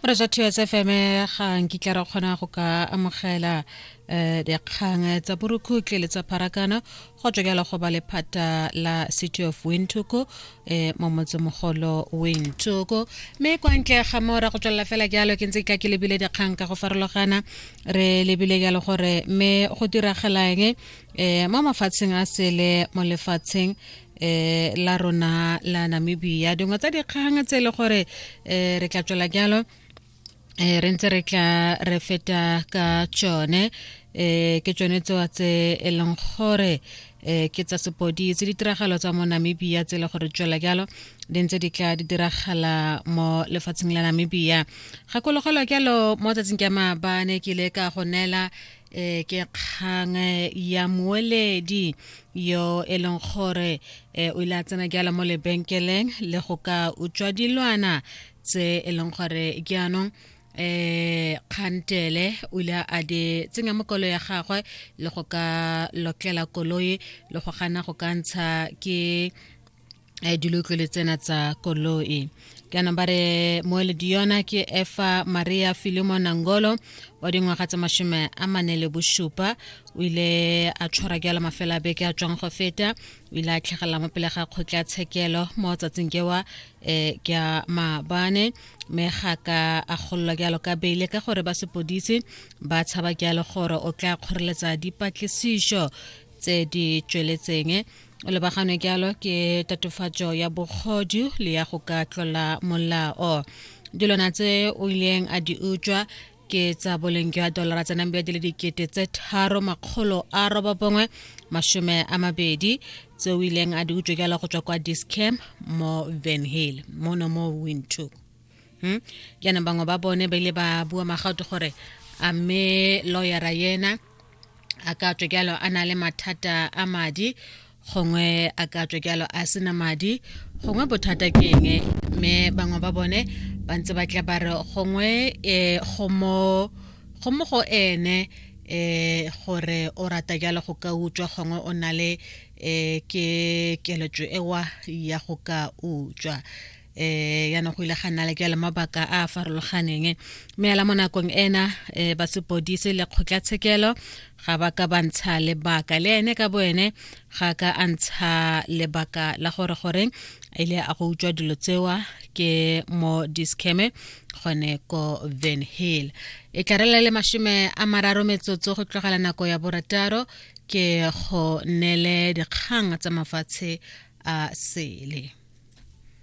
re ja two s fm ga nkitla ra kgona go ka amogela um dikgang tsa borukhutle le tsa pharakano go tswekela go ba lephata la city of wintoko um mo motsemogolo wintoko mme kwa ntle ga mo ra go tswelela fela jalo ke ntse ke tla ke lebile dikgang ka go farologana re lebile jalo gore mme go diragalang um mo mafatsheng a sele mo lefatsheng eh la rona la Namibia dingwe tsa dikgang tse e le gore eh re tla tswela jalo eh re ntse re tla re feta ka tsone eh ke tsone tsoa tse e leng gore eh ke tsa sepoditse ditiragalo tsa mo Namibia tse e le gore tswela jalo di ntse di tla di diragala mo lefatsheng la Namibia gakologelwa jalo mo tsatsing ka maabane ke ile ka go neela e ke kgang eh, ya moeledi yo e leng gore eh, o ile a tsena ke ala mo lebenkeleng le go ka utswa dilwana tse e leng gore ke anong eh khantele o ile a di tsenya mo kolo ya gagwe le go ka lokela koloi le go gana go ka ntsha ke um dilotlwele tsena tsa koloi kana ba re moeledi yona ke efa maria filimo nangolo wa dingwaga tsa mashome a mane le bosupa o ile a tshwara jalo mafelo a beke a tswang go feta o ile a tlhagelela mo pele ga kgotla tshekelo mo tsatsing kewa um ke a maabane mme ga ka a gololwa jalo ka beile ka gore ba sepodisi ba tshaba jalo gore o tla kgoreletsa dipatlisiso tse di tsweletseng o lebaganwe jalo ke tatofatso ya bogodu le ya go ka tlola molao dilwana tse o ileng a di utswa ke tsa boleng jwa dolara tsa nambe di le dikete tse tharo makgolo a roba bongwe masome a mabedi tse o ileng a di utswa jalo go tswa kwa discam mo van hill mono mo windhoek hmm? jaanong bangwe ba bone ba ile ba bua magato gore a mme lawyera yena a ka tswe jalo a na le mathata a madi gongwe a ka tswe jalo a sena madi gongwe bothata ke eng mme bangwe ba bone ba ntse ba tla ba re gongwe um go mo go ene um gore o rata jalo go ka utswa gongwe o na le um ke keletso ewa ya go ka utswa eh ya no go ile ga nna le ke le mabaka a a farologaneng mme la mo nakong ena eh ba sepodise le kgotlatshekelo ga ba ka ba ntsha lebaka le ene ka bo ene ga ka a ntsha lebaka la gore goreng a ile a go utswa dilo tsewa ke mo discame gone ko van hill e tlarela le mashome a mararo metsotso go tlogela nako ya borataro ke go nele dikgang tsa mafatshe a sele